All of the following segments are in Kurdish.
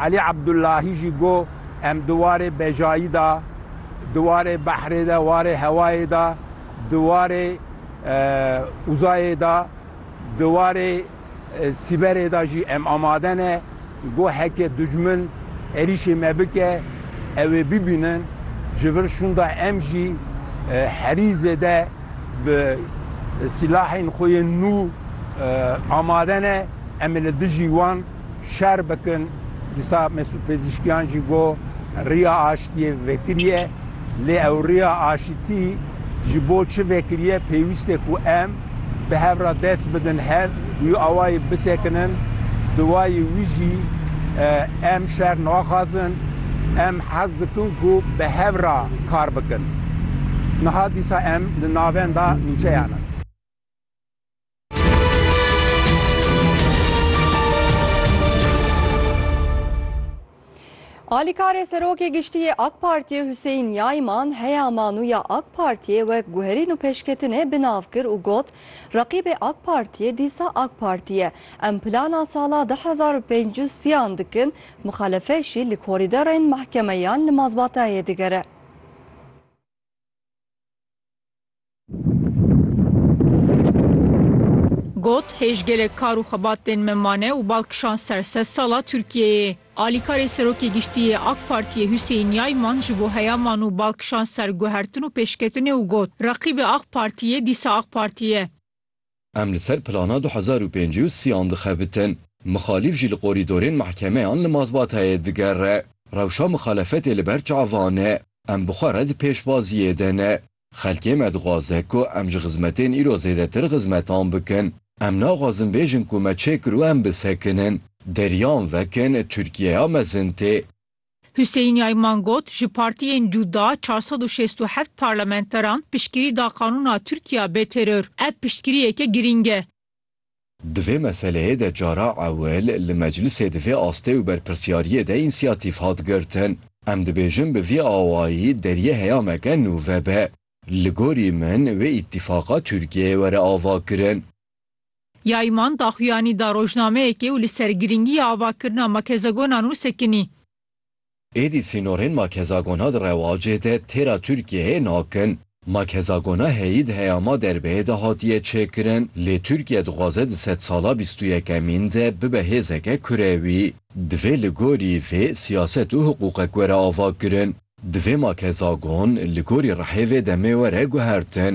Elî Ebdulahî jî got, Em di warê bejayî de, di warê behrê de, warê hewayê de, di warê uzayê de, di warê sîberê de jî em amade ne ku heke ducmin êrîşê me bike ew ê bibînin. Ji vir şûnda em jî herî zêde bi silahên xwe yên nû amade ne, em ê li dijî wan. şer bikin. Dîsa Mesûd Pêzîşkiyan jî got, Riya aştiyê vekiriye, lê ew riya aşitî ji bo çi vekiriye, pêwîst e ku em bi hev re dest bidin hev du awayî bisekinin. Duwayê wî jî em şer naxwazin, em hez dikin ku bi hev re kar bikin. Niha dîsa em li navenda nûçeyan in. Alîkarê Serokê Giştî yê AK Partiyê Huseyîn Yayman heya manûya AK Partiyê wek guherîn û pêşketinê bi nav kir û got, Reqîbê AK Partiyê dîsa AK Partî ye. Em plana sala du hezar û pênc û sî an dikin, muxelefê jî li korîderên mehkemeyan li mazbatayê digere. Got, Hêj gelek kar û xebat tên me mane û bal kişand ser sed sala Tirkiyeyê. Alîkarê Serokê Giştî yê Ak Partiyê Huseyîn Yayman ji bo heya man û bal kişand ser guhertin û pêşketinê û got, Reqîbê Ak Partî yê dîsa Ak Partî ye. Em li ser plana du hezar û pêncî û sî an dixebitin. Mixalîf jî li qorîdorên mehkemeyan li mazbatayê digere. Rewşa mixalefetê li ber çavan e. Em bi xwe re di pêşbaziyê de ne. Xelkê me dixwaze ku em ji xizmetên îro zêdetir xizmetan bikin. Em naxwazin bêjin ku me çê kir û em bisekinin. Deriyan vekin, Tirkiyeya mezin tê. Huseyîn Yayman got, Ji partiyên cuda çar sed û şêst û heft parlamenteran piştgirî da qanûna Tirkiya bê teror. Ev piştgiriyeke girîng e. Di vê meseleyê de cara ewil li meclisê di vê astê û berpirsyariyê de însiyatîf hat girtin. Em dibêjin bi vî awayî deriyê heyameke nû vebe. Li gorî min wê îtîfaqa Tirkiyeyê were avakirin. Yayman daxuyanî da rojnameyekê û li ser girîngiya avakirina makezegonan û sekinî. Êdî sînorên makhezagona di rewacê de têra Tirkiyeyê nakin. Makhezagona heyî di heyama derbeyê de hatiye çêkirin lê Tirkiye dixwaze di sedsala bîst û yekemîn de bibe hêzeke kurewî. Divê li gorî vê siyaset û hiqûqek were avakirin. Divê makhezagon li gorî rihê vê demê were guhertin.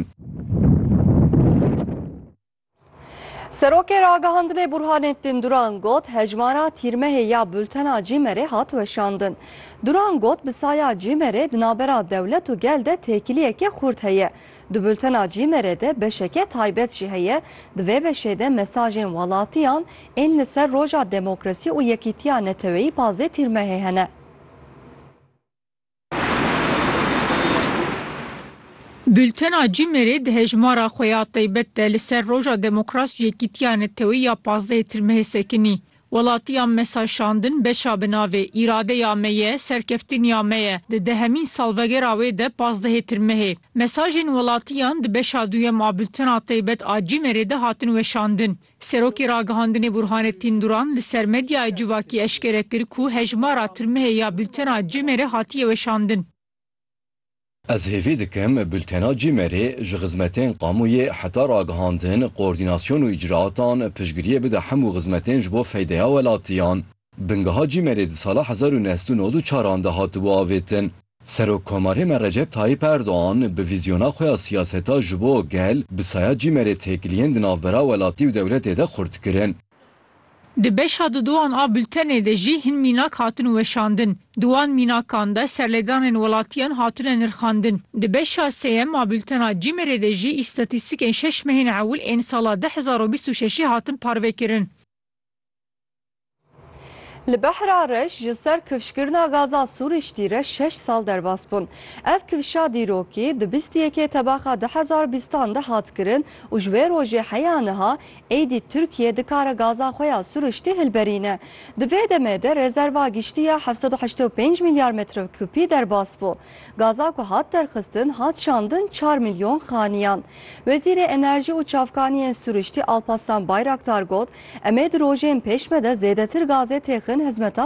Serokê ragihandinê Burhanettin Duran got hejmara tîrmehê ya bultena Cîmerê hat weşandin. Duran got bi saya Cîmerê di navbera dewlet û gel de têkiliyeke xurt heye. Di bultena Cîmerê de beşeke taybet jî heye, di vê beşê de mesajên welatiyan ên li ser roja demokrasî û yekîtiya neteweyî pazê tîrmehê hene. Bultena CIMER'ê di hejmara xwe ya taybet de li ser Roja Demokras û Yekîtiya Neteweyî ya pazdehê Tirmehê sekinî, Welatiyan me saşandin beşa bi navê Îradeya me ye, serkeftiniya me ye di dehemîn salvegera wê de pazdehê Tirmehê. Mesajên welatiyan di beşa duyem a bultena taybet a CIMER'ê de hatin weşandin. Serokê Ragihandinê Burhanettin Duran li ser medyaya civakî eşkere kir ku hejmara tirmihê ya bultena CIMER'ê hatiye weşandin. Ez hêvî dikim bultena CIMER'ê ji xizmetên kamuye heta ragihandin, koordinasyon û îcraatan piştgiriyê bide hemû xizmetên ji bo feydeya welatiyan. Bingeha Cîmerê di sala hezar û neh sed û nod û çar an de hatibû avêtin. Serok Komarê me Recep Tayyîp Erdogan bi vîzyona xwe ya siyaseta ji bo gel bi saya Cîmerê têkiliyên di navbera welatî û dewletê de xurt kirin. Di beşa dudowan a bultenê de jî hin mînak hatin weşandin. Di wan mînakan de serlêdanên welatiyan hatine nirxandin. Di beşa sêyem a bultena Cîmerê de jî îstatîstîkên şeş mehên ewil ên sala du hezar û bîst û şeşê hatin parvekirin. Li Behra Reş ji ser kifşkirina gaza Sûrîştî re şeş sal derbas bûn. Ev kifşa dîrokî di bîst û yekê tebaxa du hezar û bîstan de hat kirin û ji wê rojê heya niha êdî Tirkiye dikare gaza xwe ya Sûrîştî hilberîne. Di vê demê de rezerva giştî ya heft sed û heştê û pênc milyar metrokûpî derbas bû. Gaza ku hat derxistin hat şandin çar milyon xaniyan. Wezîrê Enerjî û Çavkaniyên Sûriştî Alpaslan Bayraktar got, Em ê di rojên pêş ve de zêdetir gazê têxin hizmeta